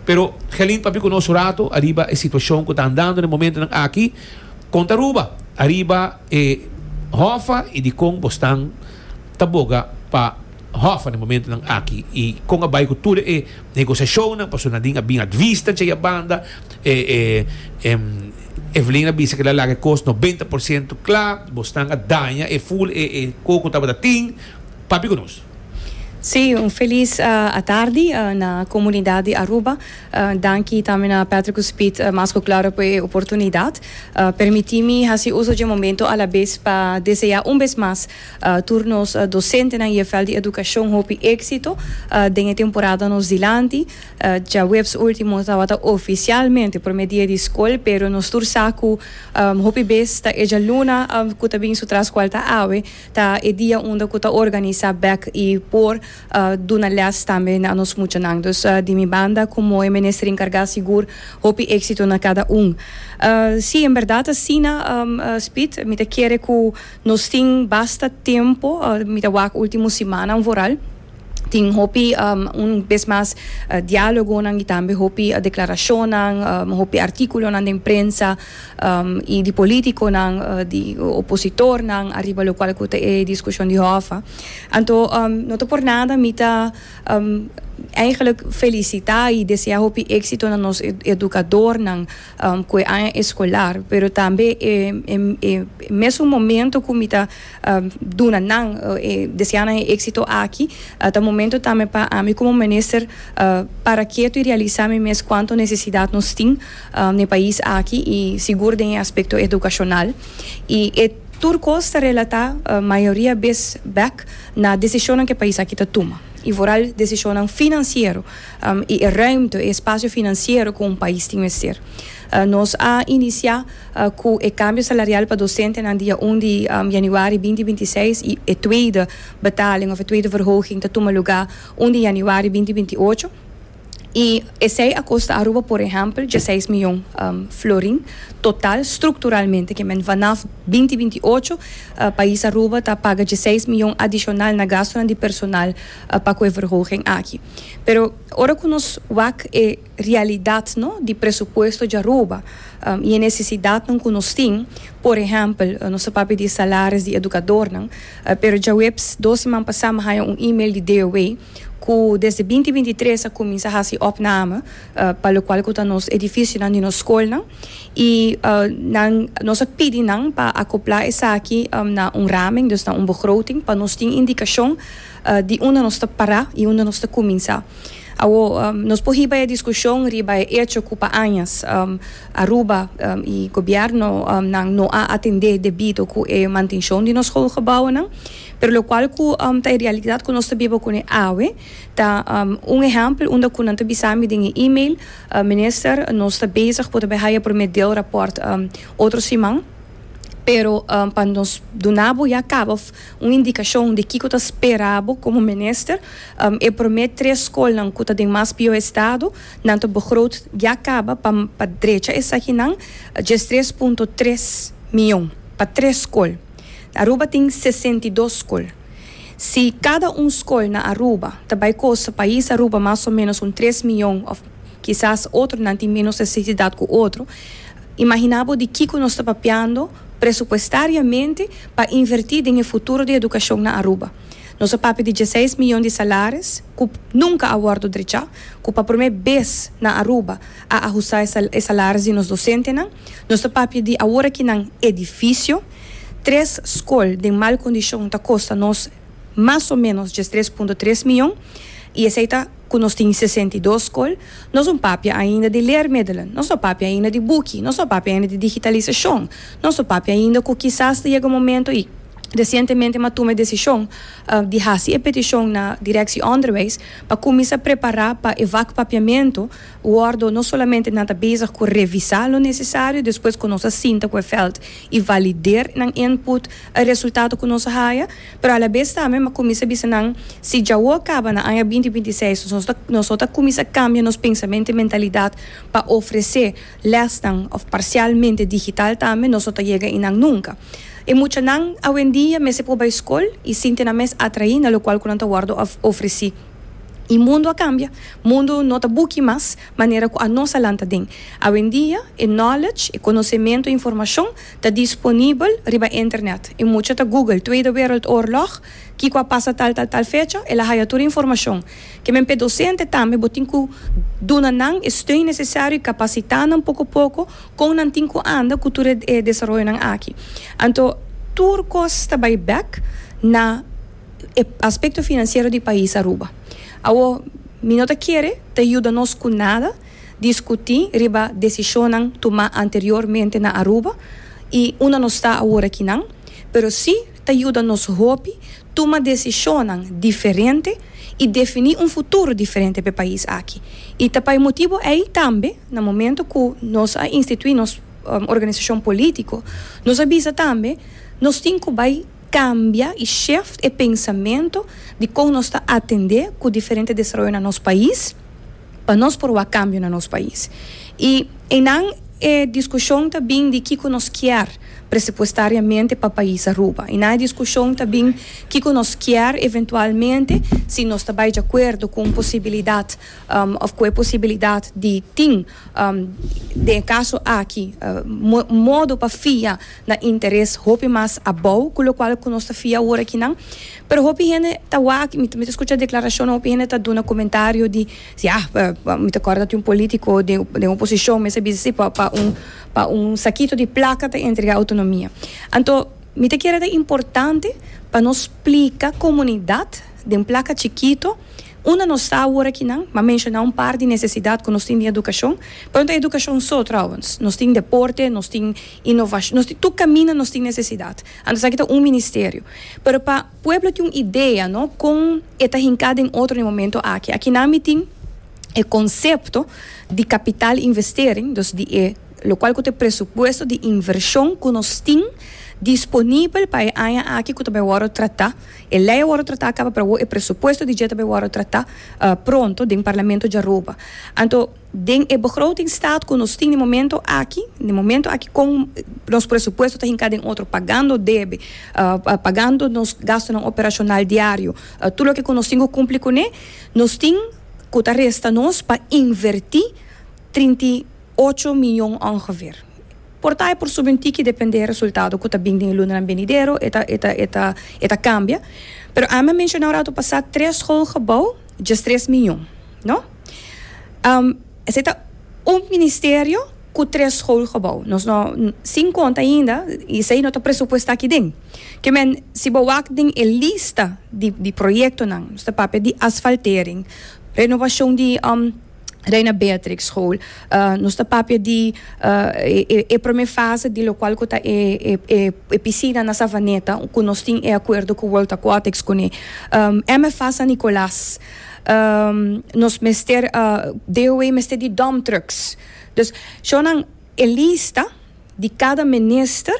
Pero Gelin papia ku nos un ratu ariba e situashon ku ta andando den momentunan aki. Kon ta Aruba ariba e hòf a i dikon bo stan? ta boga pa Hoffa den momentonan aki i kon a bai ku tur e negosiashonnan pasobra Nadine a bin atwista dje ya banda Evelyn a bisa ke el a laga e kos nobenta por siento kla bosnan a daña e ful e koko ku tabata tin papia ku nos. Sí, un felis atardi na komunidat di Aruba. Danki tambe na Patrick cu Speed mas cu claro pa e oportunidad. Permiti mi haci uso dje momento alabes pa desea un bes mas tur nos docentenan EFL di Educacion hopi exito den e temporada nos dilanti. Djaweps ultimo tabata oficialmente prome dia di scol, pero nos tur sa cu hopi bes ta e djaluna cu ta bin su tras cual ta awe ta e dia unda cu ta organisa bek y por duna lès tambe na nos muchanan. Dus di mi banda ku Moe Minister Enkargá sigur hopi éksito na kada un. Sí, en bèrdat asina Speed. Mi ta kere ku nos tin basta tempu, mi ta wak último simannan vooral, tin hopi un bes mas diálogonan i tambe hopi deklarashonnan, hopi artíkulonan den prensa. y di politiconan, di opositornan ariba locual cu ta e discusion di hòffa. Anto no ta por nada mi ta eigenlijk felicita y desea hopi exito na nos educadornan cu e aña escolar, pero tambe e mesun momento cu mi ta duna nan e deseanan e éxito aki. Ta momento tambe pa ami como Minister para keto y realisá mi mes cuanto necesidad nos tin na e pais aki y sigur den e aspecto educacional. Y e tur cos ta relatá mayoria bes bek na decisionnan cu e pais aki ta tuma y vooral decisionnan financiero y e ruimte, e espacio financiero cu un pais tin mester. Nos a inicia cu e cambio salarial pa docentenan dia un di januari binti binti seis y e tweede betaling of e tweede verhoging ta tuma lugar un di januari binti binti ocho. Y esey a costa Aruba por ehempel dieseis miyon florin total structuralmente que men vanaf binti binti ocho pais Aruba ta paga dieseis miyon adicional na gastonan di personal pa cu e verhoging aki. Pero ora cu nos wak e. realidatnan di presupuesto djaruba i e nesesidatnan ku nos tin. Por ehèmpel, nos ta papia di e salaris di edukadornan, pero djaweps dos siman pasá mi haña un email di DOE ku desde binti binti tres a kuminsá hasi òpname pa lokual ku ta nos edifisionan di nos skolnan i nan nos a pidi nan pa akoplá esaki na un ramen, dus na un begroting pa nos tin indikashon di unda nos ta pará i unda nos ta kuminsá. Awor, nos por hiba e diskushon riba e echo ku pa añas Aruba i gobièrnunan no a atendé debido ku e mantenshon di nos schoolgebouwennan, pero lokual ku ta e realidat ku nos ta biba kuné awe, ta un ehèmpel unda ku nan ta bisa mi den e email, Minister, nos ta bezig por ta bai haya promé deelrapòrt otro siman, pero pa nos duna bo ya kaba Un indikashon di kiko ta spera bo komo minister, e promé tres skolnan ku ta den mas pió estado, nan ta begroot ya kaba pa pa drecha esakinan, djes tres punto tres mion pa tres skol. Aruba tin sesenta i dos skol. Si kada un skol na Aruba ta bai kosta pais Aruba mas o ménos un tres mion òf kisas otronan tin ménos nesesidat ku otro, imaginá bo di kiko nos ta papiando. presupuestariamente pa invertí den e futuro di edukashon na Aruba. Nos a papia di dieseis miyon di salaris ku nunka a wòrdu drechá, ku pa promé bes na Aruba a ahustá e salaris di nos dosentenan. Nos ta papia di awor aki nan edifisio. Tres skol den mal kondishon ta kosta nos. mas o ménos djes tres punto tres mion, i esei ta ku nos tin sesenta i dos skol. Nos no papia ainda di leermiddelen, nos no papia ainda di buki, nos no papia ainda di digitalisashon, nos no papia ainda ku kisas ta yega momentu i resientemente mi a tuma e desishon di hasi e petishon na Direksie Onderwijs pa kuminsá prepará pa e vakpapiamentu wòrdu no solamente nan ta bezig ku revisá lo nesesario, despues ku nos a sinta ku e vèlt i valider nan input. e resultado cu nos a haya, pero a la bes tambe mi a cuminsa bisa nan, si djawoe a caba na aña binti binti seis nos nos ta nos no ta cuminsa cambia nos pensamento y mentalidad pa ofrece lesnan of parcialmente digital tambe nos no ta yega ahi nan nunca. E muchanan awendia mester por bay scol y sinti nan mes atraí na locual cu nan ta wordo of ofreci. Y mundo a cambia, mundo no ta buki mas manera cu anos a lanta den. Awendia e knowledge, e conocemento y informacion Ta disponibel riba internet y mucha ta google Tweede Wereldoorlog kico a pasa tal tal tal fecha el a haya tur informacion. Kmnp docente tambe bo tin cu duna nan e steun necesario y capacita nan poco poco con nan tin cu anda cu tur e desaroyonan aki. Anto. Tur cos ta bay bek na e aspecto financiero di pais Aruba. Awor mi no ta kere ta yuda nos cu nada. Discutí riba decisionnan tumá anteriormente na Aruba i unda nos ta awor aki nan, pero sí ta yuda nos hopi tuma decisionnan diferente i definí un futuro diferente p'e pais aki. I ta pa e motibu ei tambe na momento ku nos a instituí nos organisashon polítiko, nos a bisa tambe nos tin ku bai kambia i shift e pensamentu di kon nos ta atendé ku diferente desaroyo na nos pais, pa nos por wak kambio na nos pais. I einan e diskushon ta bin di kiko nos kier presupuestariamente pa pais Aruba. Einan e diskushon ta bin kiko nos kier eventualmente, si nos ta bai di akuerdo ku un posibilidat òf ku e posibilidat di tin den e kaso aki modo pa fia na interes hopi mas abou ku lokual ku nos ta fia aworakinan. Pero hopi hende ta wak, mi ta skucha deklarashonnan, hopi hende ta duna komentario di si ah, mi ta kòrda tin un polítiko den oposishon mester bisa si pa pa un pa un sakito di plaka ta entregá outonomia. Anto mi ta kere ta importante pa nos splika komunidat den plaka chikito unda nos sa awor akinan. Mi a menshoná un par di nesesidat ku nos tin di edukashon, pero no ta edukashon so trouwens, nos tin deporte, nos tin inovashon, nos tin tur kaminda nos tin nesesidat. Anto esaki ta un ministerio. Pero pa pueblo tin un idea no con e ta hinca den otro na e momento aki. Aki nan mi tin e concepto di capital investering, dus di e locual cu ta e presupuesto di inversion cu nos tin disponibel pa e aña aki cu ta bay worde trata. E ley a worde trata caba pero awo e presupuesto di dje ta bay worde trata pronto den parlamento djaroba. Anto. Den e begrotingsstaat cu nos tin di momento aki, di momento aki con nos presupuesto ta hinca den otro pagando debe, pagando nos gastonan operacional diario, tur loke cu nos tin cu cumpli cune, nos tin cu ta resta nos pa inverti trinta i ocho miyon ongeveer. Por ta e por subi un tiki depende e resultado cu ta bin den e lunanan benidero, e ta, e ta, e ta, e ta cambia. Pero ami a menciona un rato pasa tres schoolgebouw djestres miyon, no? Um, ese ta un ministerio cu tres schoolgebouw. Nos no, sin conta ainda, y esey no ta presupuesta aki den. Ke men, si bo wak den e lista di, di proyectonan, nos ta papia di asfaltering, renovacion di, um, Reina Beatrix school, uh, nos ta papia di, uh, e, e, e prome fase di locual cu ta e, e, e, e piscina na Savaneta, cu nos tin e acuerdo cu World Aquatics cune. Um, MFA San Nicolas. nos mester DOW mester di dump trucks. Dus show nan e lista di cada minister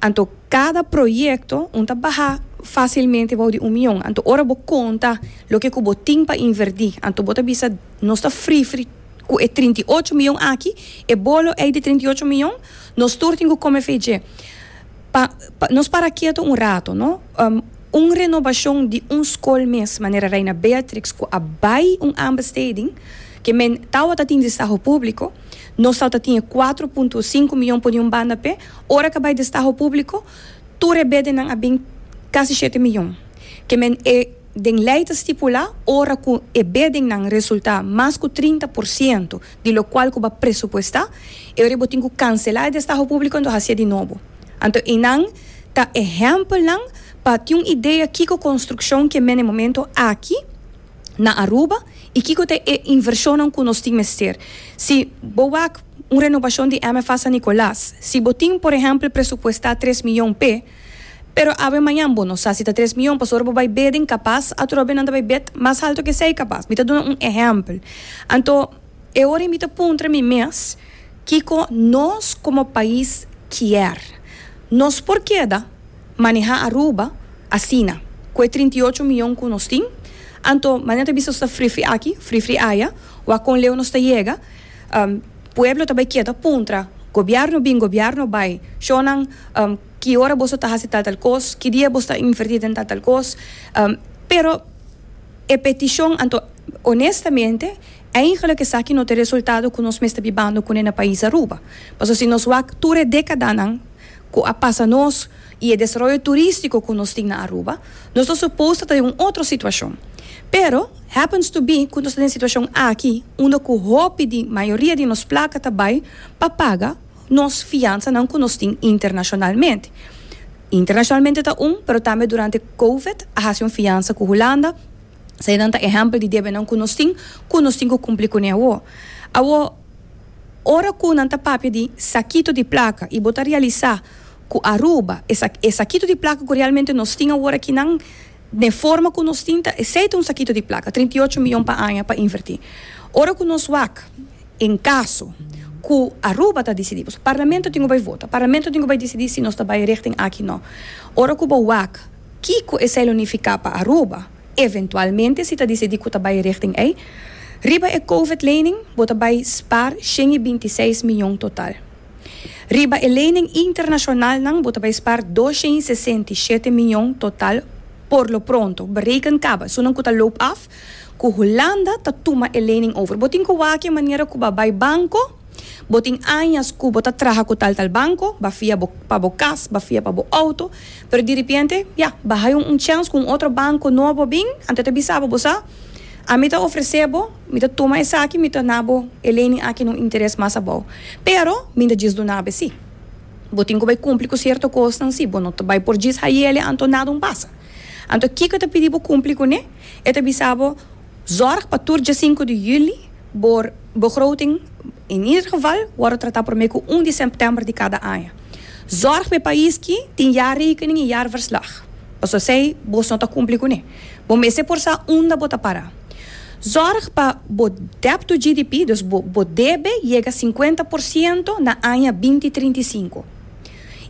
anto cada proyecto un ta baha facilmente bou di un mion anto ora bo conta loke cu bo tin pa inverti anto bo ta bisa nos ta frifri cu e trinta y ocho mion aki e bolo ey di trinta y ocho mion nos tur tin cu come fe dje. Pa, pa, nos para kieto un rato, no. Um, un renobashon di un skol mes, manera Reina Beatrix, ku a bai un aanbesteding, ke men tawata tin destaho públiko, nos tawata tin e kuater punto sinku mion pone un banda p'e, ora k'a bai destaho públiko, tur e bedennan a bin kasi shete mion. Ke men e den lei ta stipulá, ora ku e bedennan resultá mas ku trinta por siento di lo cual cu bo a presupuesta, e ora y bo tin cu cancela e destaho publico anto hacié di nobo. Anto einan ta ehempelnan pa tin un idea kico construccion ke mene momento aki na Aruba y kico ta e inversionnan cu nos tin mester. Si bo wak un renovacion di MFA San Nicolas, si bo tin por ehempel presupuesta tres miyon p'e. Pero awe mañan bo no sa si ta tres mion, pasobra bo bai bed incapaz, atrobe nan ta bai bed mas halto ke esei capaz. Mi ta duna un ehempel. Anto, e ora ei mi ta puntra mi mes, kiko nos como pais kier? Nos por keda maneha Aruba asina, ku e trinta i ocho mion ku nos tin? Anto, mañan ta bisa nos ta frifri aki, frifri aya, wak kon leu nos ta yega? Pueblo ta bai kiet a puntra Gobierno bin Gobierno bai show nan ki ora boso ta hasi tal tal kos ki dia boso ta inverti den tal tal kos pero e peticion anto honestamente eigenlijk esaki no ta e resultado ku nos mester bibando kune na pais Aruba paso si nos wak tur e decadanan ku a pasa nos i e desaroyo turístiko ku nos tin na Aruba, nos ta supos ta ta den un otro situashon. Pero, happens to be ku nos ta den situashon aki unda ku hopi di mayoria di nos plaka ta bai pa paga nos fiansanan ku nos tin internashonalmente. Internashonalmente ta un, pero tambe durante Covid a hasi un fiansa ku Hulanda, esei nan ta ehèmpel di debenan ku nos tin ku nos tin ku kumpli ku ne awor. Awor, ora ku nan ta papia di sakito di plaka i bo ta realisá. ku Aruba, esak e sakitu di plaka ku realmente nos tin awor aki nan, den forma ku nos tin ta esei ta un sakitu di plaka, trinta i ocho miyon pa aña pa inverti. Ora ku nos wak, en kaso ku Aruba ta disidí, pasobra parlamento tin ku bai vota, parlamento tin ku bai disidí si nos ta bai richting aki nò. Ora ku bo wak kiko esei lo nifiká pa Aruba, eventualmente si ta disidí ku ta bai richting ei, riba e covid lening bo ta bai spar shen i binti seis miyon total. Riba e lening internashonalnan bo ta bai spaar dosha i sesenta i shete mion total por lo pronto. Bereken kaba esunnan ku ta loop af ku Hulanda ta tuma e lening over. Bo tin ku wak e manera ku ba bai banko, bo tin añas ku bo ta traha ku tal tal banko, ba fia bo pa bo kas, ba fia pa bo outo, pero diripiente, ya, ba hai un chèns ku un otro banko nobo a bin, anto e ta bisa bo, bo sa, ami ta ofresé bo, Mi ta tuma esaki, mi ta na bo, e lening aki no interes mas abou. Pero, mi no ta djis dunabe si. Bo tin cu bay cumpli cu cierto cosnan si bo no ta bay por djis hayele anto nada un pasa. Anto kiko ta pidi bo cumpli cu ne? E ta bisa bo, Zorg pa tur djasinco di juli bo begroting, in ieder geval, wordo trata prome cu un di september di cada aña. Zorg pa e pais ki tin jaarrekening y jaarverslag. Pas asey bo no ta cumpli cu ne. Bo mester por sa unda bo ta para. Zòrg pa bo debt to GDP, dus bo bo debe yega sinkuenta por siento na aña binti trinta i sinku.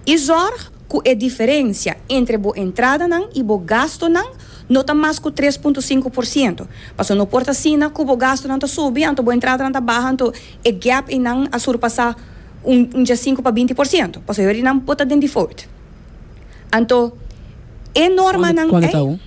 I zòrg ku e diferensia entre bo entradanan i bo gastunan no ta mas ku tres punto sinku por siento, pasobra no por ta asina ku bo gastunan ta subi anto bo entradanan ta baha anto e gèp einan a surpasá un un djasinku pa binti por siento, pasobra yorinan bo ta den default. Anto e normanan ei,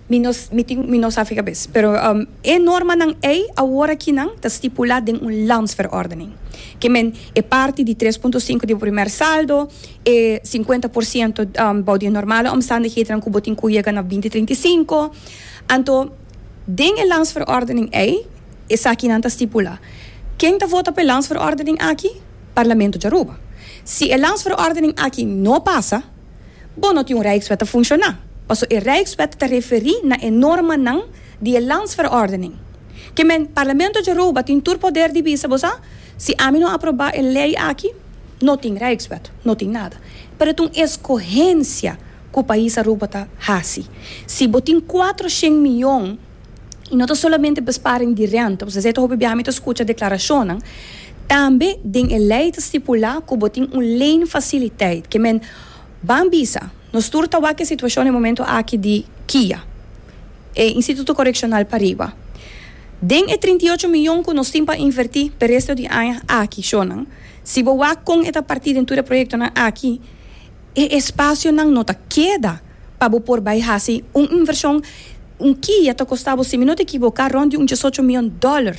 mi no mi tin mi no sa fika bes, pero um, e normanan ei awor aki nan ta stipulá den un landsverordening. Ke men e parti di tres punto sinku di bo primer saldo, e sinkuenta por siento um, bou di e normale omstandighedennan ku bo tin ku yega na binti trinta i sinku. Anto den e landsverordening ei esakinan ta stipulá. Ken ta vota pa e landsverordening aki? Parlamento djaruba. Si e Landsverordening aki no pasa, bo no tin un Rijkswet ta funshoná, paso e Rijkswet ta referí na e normanan di e Landsverordening. Ke men, Parlamento djaruba tin tur poder di bisa bo sa, si ami no aprobá e lei aki, no tin Rijkswet, no tin nada. Pero e ta un eskohensia ku Pais Aruba ta hasi. Si bo tin kuatro shen mion i no ta solamente besparing di renta, pues esei ta hopi biaha mi ta skucha deklarashonnan, tambe den e lei ta stipulá ku bo tin un leenfasiliteit ke men ban bisa nos tur ta wak e situashon e momentu aki di kia e Instituto Korekshonal pariba. Den e trinta i ocho miyon ku nos tin pa invertí p'e resto di aña aki shonnan, si bo wak kon e ta partí den tur e proyektonan aki, e espasionan no ta keda. Pa bo por bai hasi un invershon, un kia ta kosta bo, si mi no ta ekiboká, rònt di un diesocho mion dòler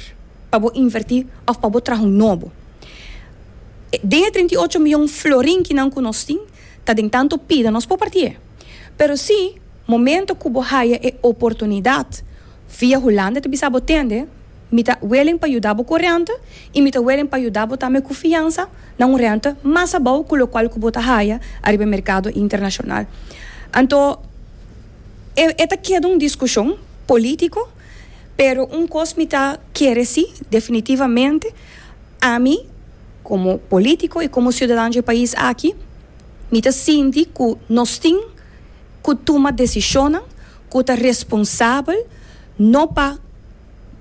pa bo invertí òf pa bo traha un nobo. Den e trinta i ocho mion florin ki nan ku nos tin, ta den tantu pida nos por partié. Pero sí, momento ku bo haya e oportunidat, Via Hulanda ta bisa bo, Tende, mi ta willing pa yuda bo ku rente i mi ta willing pa yuda bo tambe ku fiansa na un rente mas abou ku lokual ku bo ta haya ariba e merkado internashonal. Anto e e ta keda un diskushon polítiko, pero un kos mi ta kere si, definitivamente ami komo polítiko i komo siudadan dje pais aki mi ta sinti ku nos tin, ku tuma desishonnan ku ta responsabel no pa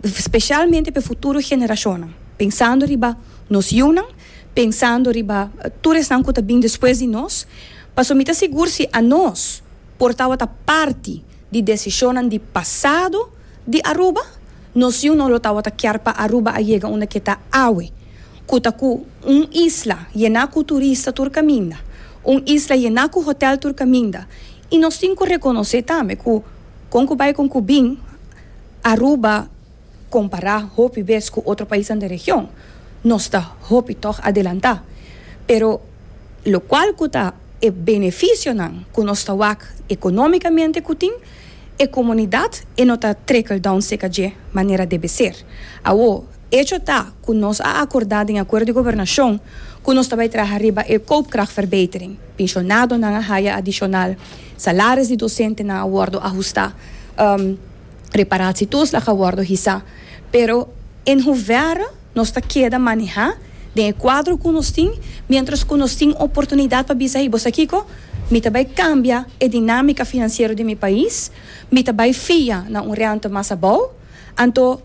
spesialmente pa e futuro generashonnan, pensando riba nos yunan, pensando riba tur esnan ku ta bin despues di nos, pasobra mi ta sigur si anos por tabata parti di desishonnan di pasado. Di Aruba, Nos yu no lo tawata kier pa Aruba a yega unda ke ta awe, ku ta ku un isla yená ku turista tur kaminda, un isla yená ku hotel tur kaminda. I nos tin ku rekonosé tambe ku kon ku bai kon ku bin, Aruba kompará hopi bes ku otro paisnan den region, nos ta hopi tòg adelantá. Pero lokual ku ta e benefisionan ku nos ta wak ekonómikamente ku tin? E komunidat e no ta trekel down seka dje manera debe ser. Awo, echo ta ku nos a akordá den akuerdo di gobernashon ku nos ta bai traha riba e koopkrachtverbetering. Pinshonadonan a haya adishonal, salaris di dosentenan a wòrdu ahustá, reparatietuslag a wòrdu hisá. Pero en hovèra. Nos ta keda manehá den e kuadro ku nos tin miéntras ku nos tin oportunidat pa bisa, Hey, bo sa kiko? Mi ta bai kambia e dinámika finansiero di mi pais, mi ta bai fia na un rènta mas abou, anto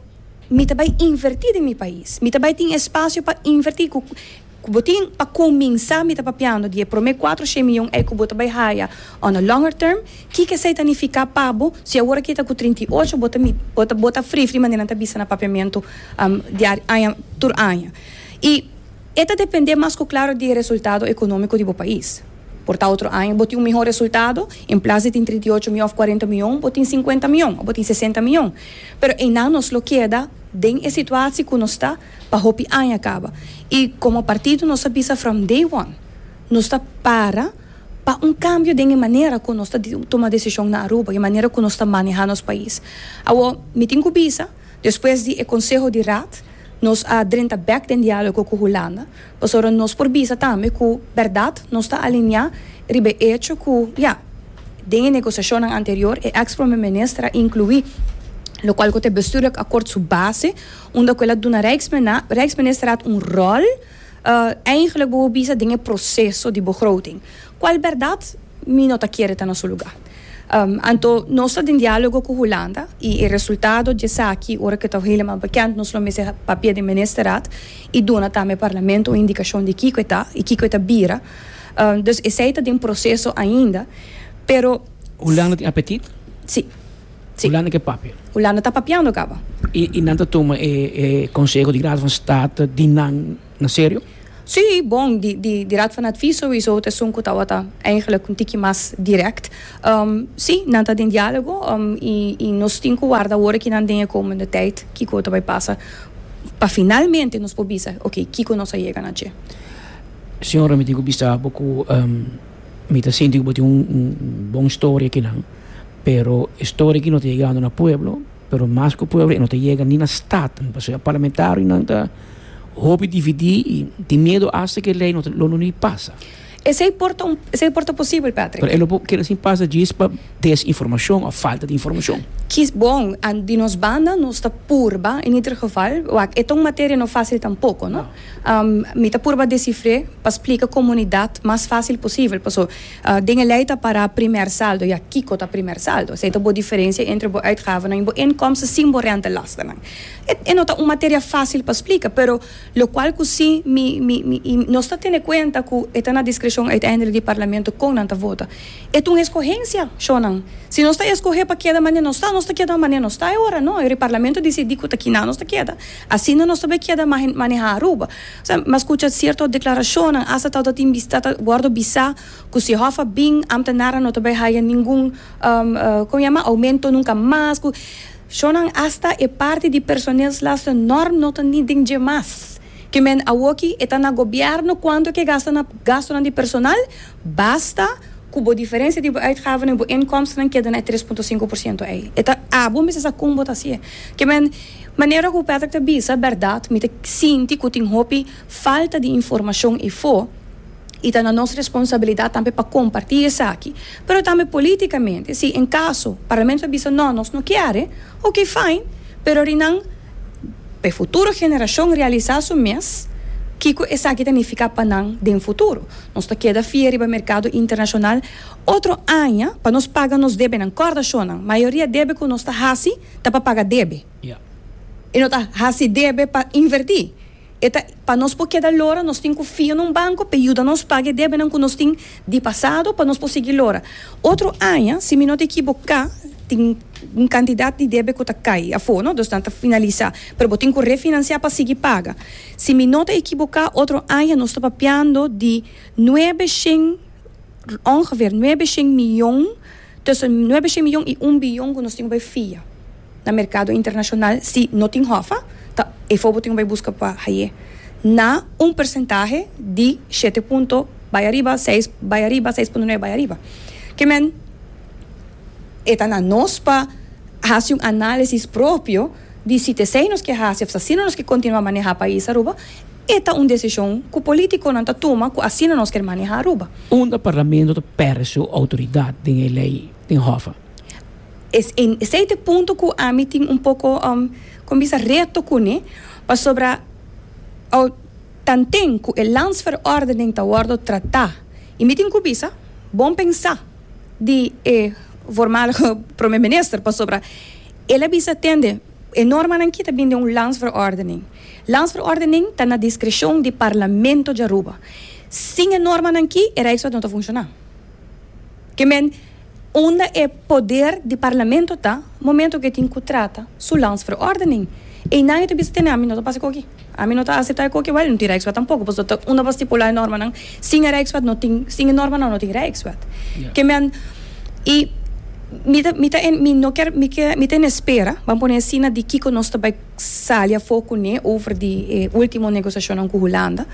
mi ta bai invertí den mi pais, mi ta bai tin espasio pa invertí ku. Ku bo tin, pa kuminsá mi ta papiando di e promé kuatro shei mion ei ku bo ta bai haya on a longer term. Kiko esei ta nifiká pa bo si awor aki ta ku trinta i ocho bo ta bo ta bo ta frifri manera nan ta bisa na papiamentu diario aña tur aña. I e ta dependé mas ku klaru di e resultado ekonómiko di bo pais. Por ta otro aña bo tin un mihó resultado, en plas di tin trinta i ocho mion òf kuarenta mion bo tin sinkuenta mion òf bo tin sesenta mion. Pero einan nos lo keda den e situasi ku nos ta. pa hopi aña caba. Y como partido nos a bisa from day one nos ta para pa un cambio den e manera cu nos ta tuma decision na Aruba y e manera cu nos ta maneha nos pais. Awo mi tin cu bisa despues di e conseho di Raad nos a drenta bek den dialogo cu Hulanda pasobra nos por bisa tambe cu berdad nos ta alinea riba e hecho cu ya den e negociacionnan anterior e ex Prome Minister a inclui locual cu ta e bestuurlijk akkoord su base. Unda ku el a duna Rijksmena, Rijksministerat un ròl Eigentlik bo bo bisa den e proseso di begroting kual bèrdat mi no ta kere ta na su lugá. Anto nos ta den diálogo ku Hulanda i e resultado di esaki ora ke ta heleman bekend nos lo mester papia den Ministerat i duna tambe Parlamento un indikashon di kiko e ta i kiko e ta bira. Dus esei ta den proseso ainda pero. Hulanda tin apetit? Sí. Si. Hulanda ke papia. Hulanda ta papiando caba. Y y nan ta tuma e e conseho di Raad van State di nan na serio? Si, bon di di di Raad van Advies sowiso ta esun cu tawata eigenlijk un tiki mas direct. Si, nan ta den dialogo y y nos tin cu warda awor aki nan den e komende tijd kico ta bay pasa pa finalmente nos por bisa, ok, kico nos a yega na dje. Señora mi tin cu bisa bo cu. Mi ta sinti ku bo tin un bon storia ki nan, pero e storia ki no ta yegando na pueblo, pero mas ku pueblo e no ta yega ni na stat, pasobra e parlamentarionan ta hopi dividí i tin miedu asta ku e lei no ta lo ni pasa. Esei por ta esei por ta posibel, Patrick? Pero e lo por keda sin pasa djis pa desinformashon òf falta di informashon. Ki bon, di nos banda nos ta purba, en ieder geval, wak e ta un materia no fásil tampoko, no? Mi ta purba desifr'é pa splika komunidat mas fásil posibel. Paso, den e lei ta pará primer saldo. Ya, kiko ta primer saldo? Esei ta bo diferensia entre bo uitgavenan i bo inkomsten sin bo rentelastenan. E e no ta un materia fásil pa splika, pero lokual ku sí mi mi mi i nos ta tene kuenta ku e ta na diskreshon uiteindelik di Parlamento kon nan ta vota. E ta un eskohensia, shònan. Si nos ta eskohé pa keda mane nos ta, nos ta keda mane nos ta e ora, no? Ora e Parlamento disidí ku ta kiná nos ta keda. Asina nos ta be keda maneha Aruba. Osea, mi a skucha sierto deklarashonnan, asta tawata tin bista ta wòrdu bisá ku si hòf a bin, Amta Nara no ta bai haya ningun como yama aumento nunka mas ku shonnan asta e parti di personeelslastennorm no ta ni den dje mas. Ke men awoki e ta na gobièrnu kuantu e ke gasta na gastunan di personal. Basta ku bo diferensia di bo uitgavenan i bo inkomstenan keda na e tres punto sinku por siento ei. E ta abo mester sa kon bo ta hasié. Ke men, manera ku Patrick ta bisa, bèrdat, mi ta sinti ku tin hopi falta di informashon ifo i ta na nos responsabilidat tambe pa kompartí esaki. Pero tambe polítikamente, si en kaso Parlamento a bisa, nò, nos no kier e, oke, fain, pero ri nan. pa e futuro generashon realisá su mes kiko esaki ta nifiká pa nan den futuro. Nos ta keda fia riba merkado internashonal otro aña pa nos paga nos debenan. Kòrda shonnan, mayoria debe ku nos ta hasi ta pa paga debe i no ta hasi debe pa invertí. E ta pa nos por keda lora, nos tin ku fia na un banko p'e yuda nos paga e debenan ku nos tin di pasado pa nos por sigui lora. Otro aña, si mi no ta ekiboká, tin un kantidat di debe ku ta kai afó, no? Dus nan ta finalisá, pero bo tin ku refinansiá pa sigui paga. Si mi no ta ekiboká, otro aña nos ta papiando di nuebe shen, ongeveer nuebe shen miyon, Tussen nuebe shen miyon i un biyon ku nos tin ku bai fia na merkado internashonal si no tin hòfa ta efo bo tin ku bai buska pa haye na un persentahe di shete punto bai ariba seis bai ariba seis punto nuebe bai ariba ke men e ta na nos pa hasi un analisis propio di si ta esei nos ke hasi òf ta asina nos ke kontinua maneha pais Aruba. E ta un desishon ku polítikonan ta tuma ku asina nos ker manehá Aruba. Unda Parlamento ta pèrdè su outoridat den e lei den hòf a. Esei ta e punto ku ami tin un poko, kon bisa, reto kuné, pasobra al tanten ku e Landsverordening ta wòrdu tratá i mi tin ku bisa, bon pensá di e voormalige Prome Minister, pasobra el a bisa tende e normanan ki ta bini den un Landsverordening. Landsverordening ta na diskreshon di Parlamento di Aruba. Sin e normanan ki e Rijkswet no ta funshoná. Ke men unda e poder di Parlamento ta momento ke tin ku trata su Landsverordening. Einan e ta bisa tene ami no ta pasa koki. Ami no ta aseptá e koki. Wèl, no tin Rijkswet tampoko, pasobra ta unda pa stipulá e normanan. Sin e Rijkswet no tin sin e normanan no tin Rijkswet. Ke men i mi ta mi ta mi no kier mi kier mi ta en espera, ban pone asina, di kiko nos ta bai. sali afó kuné over di e último negosiashonnan ku Hulanda.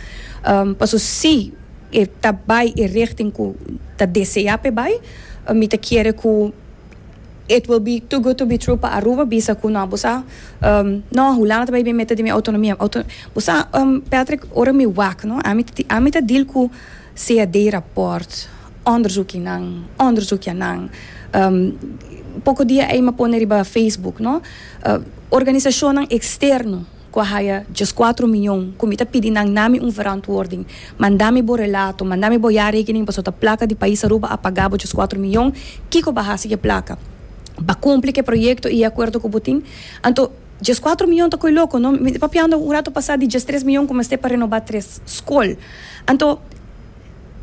Paso si e ta bai e richting ku ta deseá pa e bai, mi ta kere ku it will be too good to be true pa Aruba bisa ku nò bo sa nò Hulanda ta bai bien meta di mi autonomia. Bo sa Patrick ora mi wak nò ami ami ta deal ku sea d'e raport, onderzoekinan, onderzoekianan, poko dia ei m'a pone riba Facebook, no, organisashonnan eksterno ku a haya djes kuatro mion, ku mi ta pidi nan na mi un verantwording, manda mi bo relato, manda mi bo jarekening paso ta plaka di pais Aruba a pagá bo djes kuatro mion, kiko b'a hasi ku e plaka? B'a kumpli ku e proyekto i e akuerdo ku bo tin? Anto. Djes kuater mion ta koe loko, no? Mi ta papiando un rato pasá di djes tres mion ku mester pa renobá tres skol. Anto.